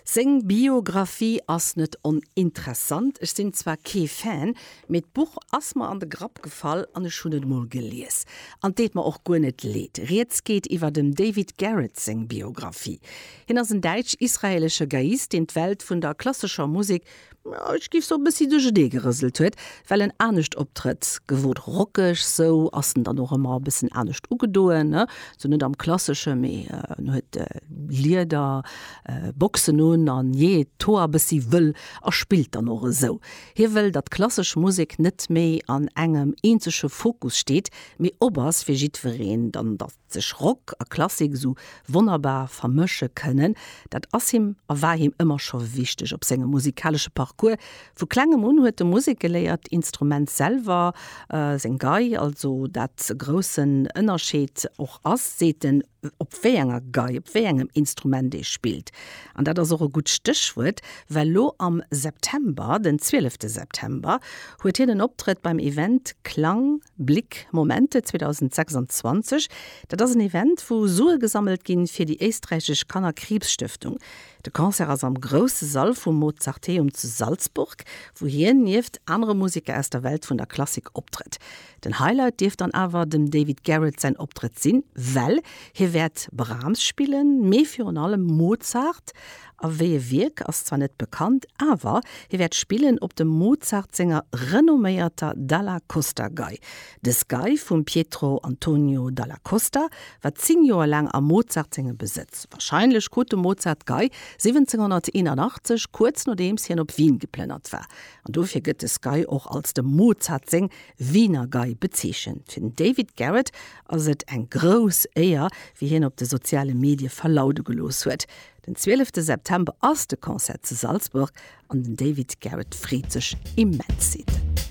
Seng Biographie ass net oninteressant. Ech sinn zwar kee Fan, mee d'Buch ass mer an de Grapp gefall an ech hunn et emol gelies. An et deet mer och guer net leed. Rieds geet iwwer dem David Garrett seng Biographie. Hien ass en däitsch-israelesche Geiist, deen d'Welt vun der klassescher Musek ech giff soen, e bëssi duerchernee gerëselt huet, well en anescht optrëtt. Gewot rockeg, sou ass en dann och ëmmer e bëssen anescht ugedoen, ne sou net am klassesche, mee en huet Lieder Boxen un a jeet d'Hoer e bëssi wëll a spillt dann och esou. Hie wëll, datt klassesch Musek net méi an engem eenzege Fokus steet, mee op ass fir jiddwereen. Dann da Sech Rock a Klassik esou wonnerbar vermësche kënnen, dat ass him a war him ëmmer scho wichteg op sengem musikalesche Parcours. Vu Klengem un huet e Musek geléiert, Instrument selwer, seng Gei, also dat e groussen Ënnerscheed och ass, seet en, op wéi enger Gei, op wéi engem Instrument ee spillt. An dat ass och e gutt Stéchwuert, well lo am September, den 12 September, huet hien en Optrëtt beim Event Klang, Blick Momente 2026, dat ass en Event, wou Sue gesammelt ginn, fir déi éisträichesch Kannerkriibsstëftung. De Concert ass am grousse Sall vum Mozarteum zu Salzburg, wou hien nieft anere Museker aus der Welt vun der Klassik optrëtt. Den Highlight dierft dann awer dem David Garrett säin Optrëtt sinn, well hie wäert Brahms spillen, mee virun allem Mozart A wéi e Wierk ass zwar net bekannt, awer hie wäert spillen op dem Mozart senger renomméierter Dalla Costa Gei. Dës Gei vum Pietro Antonio Dalla Costa war 10 Joer laang a Mozart sengem Besëtz. Warscheinlech krut de Mozart d'Gei 1781, kuerz nodeems hien op Wien geplënnert war. An dofir gëtt dës Gei och als dem Mozart seng Wiener Gei bezeechent. Fir den David Garrett ass et eng grouss Éier, wéi hien op de soziale Medie verlaude gelooss huet. Den 12 te September ass de Concert zu Salzburg an den David Garrett freet sech immens. Zitt.